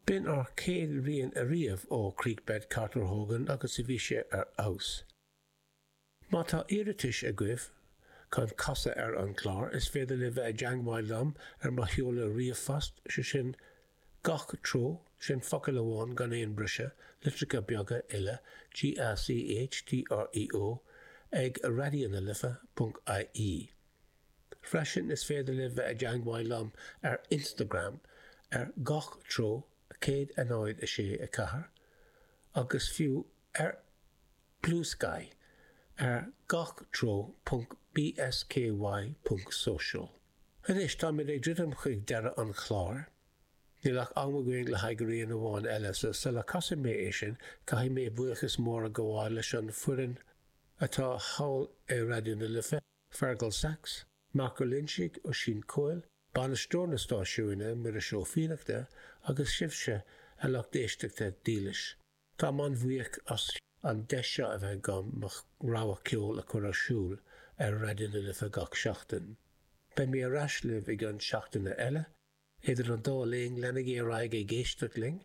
B'in ár gcéad rian ariamh ó Creekbed Carter Hogan agus bhí sé ar fheabhas. Má tá iarratais agaibh chun casadh ar an gclár, is féidir libh bheith i dteangmháil liom ar mo sheoladh ríomhphost, sé sin Gach Treo, sin focal amháin gan aon briseadh, litreacha beaga uile, GACH TREO, ag raidió na life, ponc IE. Freisin is féidir libh bheith i dteangmháil liom ar Instagram ar gach treo, 106 4, agus fiú ar Bluesky ar gach treo ponc bsky ponc social. Anois táimid ag druidim chuig deireadh an chláir. Níl ach am againn le haghaidh rian amháin eile so sula casfaidh mé é sin caithfidh mé buíochas mór a gabháil leis an foireann atá thall i Raidió na Life, Fergal Sachs, Mark Ó Loinsigh, Oisín Coyle, Bainisteoir na Stáisiúine, Muiris Ó Fiannachta, agus sibhse, a lucht éisteachta dílis. Táim an-bhuíoch as an deis seo a bheith agam mo rogha ceoil a chur ar siúl ar Raidió na Life gach seachtain. Beidh mé ar ais libh i gceann seachtaine eile. Idir an dá linn, leanaigí ar aghaidh ag éisteacht linn!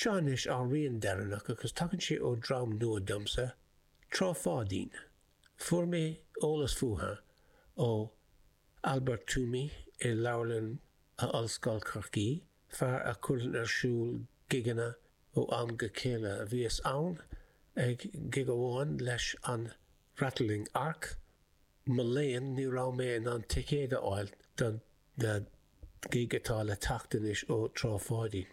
Seo anois ár rian deireanach agus tagann sé ó dream nua domsa, Trá Pháidín. Fuair mé eolas fútha ó Albert Twomey i Leabharlann Ollscoil Chorcaí, fear a chuireann ar siúl gigeanna ó am go chéile. Bhíos ann ag gig amháin leis an Rattling Ark, mo léan ní raibh mé in ann ticéad a fháil don gig atá le teacht anois ó Trá Pháidín.